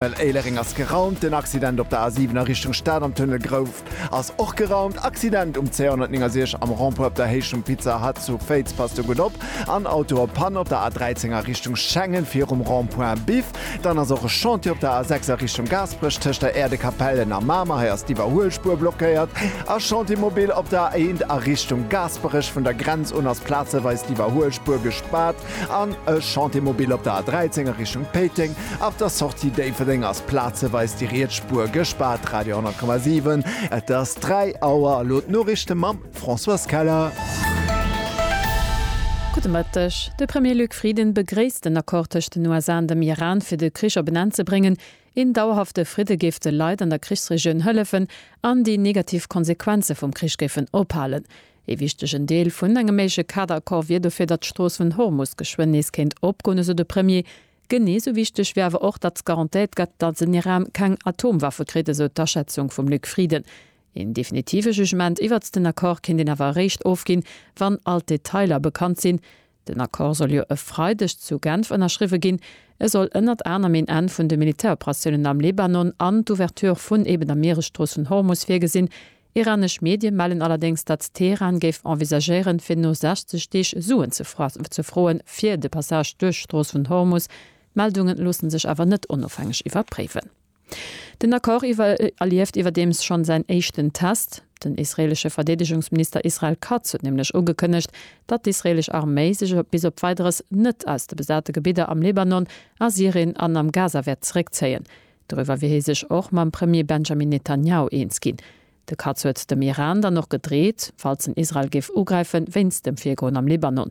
Well Éilereng ass geraumt, den Accident op der A7 a Richtung Stad am Tunnel Grouft ass och geraumt, Accident um C169 am Rond-Point op der Héicht vum Pizza Hut zu Féiz, passt do gutt op, an Auto op Panne op der A13 a Richtung Schengen virum Rond-Point Biff. Dann ass och e Chantier op der A6 a Richtung Gaasperech tëscht der Äerdekapell en a Mamer, hei ass d'Iwwerhuelspuer blockéiert, a Chantier mobile op der A1 a Richtung Gaasperech, vun der Grenz un ass plazeweis d'Iwwerhuelspuer gespaart. An e Chantier mobil op der A 13 a Richtung Péiteng. Ab der Sortie Déifferdeng ass plazeweis déi riets Spuer gespaart. Radio 100,7. Et ass 3 Auer. Elo d'Noriichte mam Françoise Keller. Gudde Mëtteg. De Premier Luc Frieden begréisst den Accord tëscht den USA an dem Iran, fir de Krich op en Enn ze bréngen. Een dauerhafte Fridde géif de Leit an der Krichsregioun hëllefen an déi negativ Konsequenze vum Krich géifen ophalen. Ee wichtegen Deel vun engem méigleche Kaderaccord wier dofir, datt d'Strooss vun Hormus geschwënn nees kéint opgoen, esou de Premier. Genee sou wichteg wier awer och, datt garantéiert gëtt, datt den Iran keng Atomwaffe kritt, esou d'Aschätzung vum Luc Frieden. Een definitive Jugement iwwert den Accord kéint een awer eréischt ofginn, wann all d'Detailer bekannt sinn. Den Accord soll jo e Freideg zu Genf ënnerschriwwe ginn. E soll ënnert anerem een Enn vun de Militäroperatiounen am Libanon an d'Ouverture vun eben der Mieresstrooss vun Hormus virgesinn. Iranesch Medie mellen allerdéngs, datt Teheran géif envisagéieren, fir no 60 Deeg Suen ze froen, fir de Passage duerch d'Strooss vun Hormus. D'Meldunge loosse sech awer net onofhängeg iwwerpréiwen. Den Accord erlieft iwwerdeems schonn säin éischten Test. Den israeelesche Verdeedegungsminister Israel Katz huet nämlech ugekënnegt, datt d'israeelesch Arméi sech bis op Weideres net aus de besate Gebidder am Libanon, a Syrien an am Gaza wäert zeréckzéien. Doriwwer wier hie sech och mam Premier Benjamin Netanjahu eens ginn. De Katz huet dem Iran dann och gedreet, falls en Israel géif ugräifen, wéinst dem Virgoen am Libanon.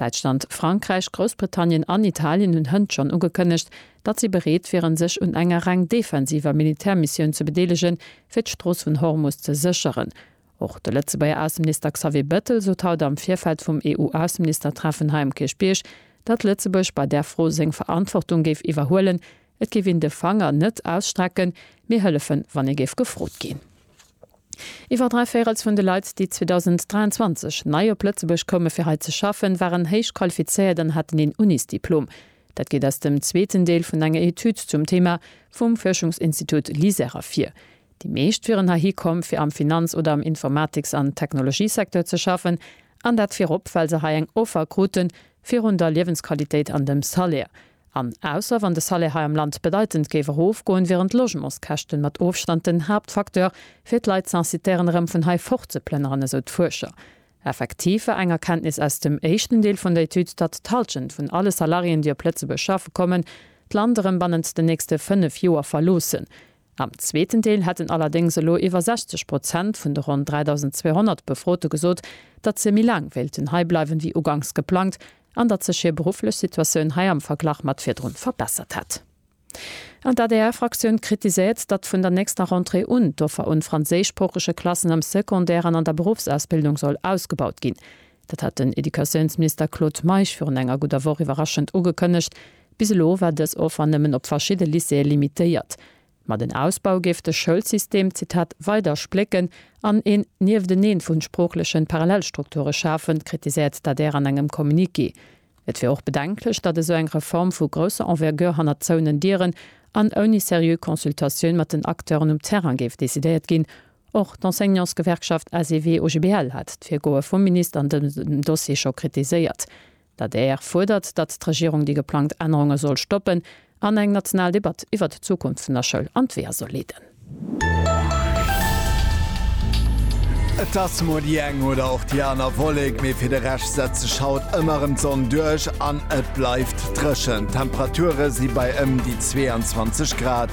Däitschland, Frankräich, Groussbritannien an Italien hunn hënt schonn ugekënnegt, datt si bereet wieren, sech un enger reng defensiver Militärmissioun ze bedeelegen, fir d'Strooss vun Hormus ze sécheren. Och de Lëtzebuerger Ausseminister Xavier Bettel sot haut am Virfeld vum EU-Ausseministertreffen hei um Kierchbierg, datt Lëtzebuerg bei där Fro seng Verantwortung géif iwwerhuelen, Et géif een de Fanger net ausstrecken, mee hëllefen, wann ee géif gefrot ginn. Iwwer dräi Véirels vun de Leit, déi 2023 nei op Lëtzebuerg koume fir hei ze schaffen, waren héich qualifizéiert an haten een Unisdiplom. Dat geet aus dem zweeten Deel vun enger Etüd zum Thema vum Fuerschungsinstitut LISER ervir. Déi meescht wieren heihi komm, fir am Finanz oder am Informatiks an Technologiesecteur ze schaffen, an dat virop, well se hei eng Offer krute virun der Liewensqualitéit an dem Salaire. An ausser wann de Salaire hei am Land bedeitend géif erofgoen, wieren d'Logementskäschten mat Ofstand den Haaptfacteur, fir d'Leit z'incitéieren erëm vun hei fortzeplënneren, esou d'Fuerscher. Effektiv war eng Erkenntnis aus dem éischten Deel vun der Etüd, datt d'Hallschent vun alle Salariéen, déi op Lëtzebuerg schaffe kommen, d'Land erëm bannent den nächste fënnef Joer verloossen. Am zweeten Deel hätten allerdéngs elo iwwer 60 Prozent vun de ronn 3.200 Befrote gesot, datt se méi laang wéilten hei bleiwen, wéi uganks geplangt an datt sech hir berufflech Situatioun hei am Verglach mat virdrun verbessert hätt. An d'ADR-Fraktioun kritiséiert, datt vun der nächster Rentrée un d'Offer un franséischsproochege Klassen am Secondaire an an der Beruffsausbildung soll ausgebaut ginn. Dat hat den Educatiounsminister Claude Meisch virun enger gudder Woch iwwerraschend ugekënnegt. Bis elo war dës Offer nëmmen op verschidde Lycéeë limitéiert. Ma den Ausbau géif de Schoulsystem, Zitat, weider splécken an een Niefteneen vu sproochlechen Parallelstrukture schafen, kritiséiert d'adr an engem Communiqué. Et wier och bedenklech, datt esou eng Reform vu grousser Envergure hannert zouenen Dieren an ouni seriö Consultatioun mat den Acteuren um Terrain géif decidéiert ginn, Och d'Enseignantsgewerkschaft ACV-OGBL hat d'Virgoe vum Minister an dësem Dossier scho kritiséiert. D'adr fuerdert, datt d'Regierung déi geplangt Ännerunge soll stoppen an eng national Debatt iwwert d'Zukunft vun der Schoul an d'Weeër soll leeden. Et ass mol déi eng oder och déi aner Wollek, mee fir de Rescht setzt sech haut ëmmer erëm d'Sonn duerch an et bleift dréchen. D'Temperature si bei ëm déi 22 Grad.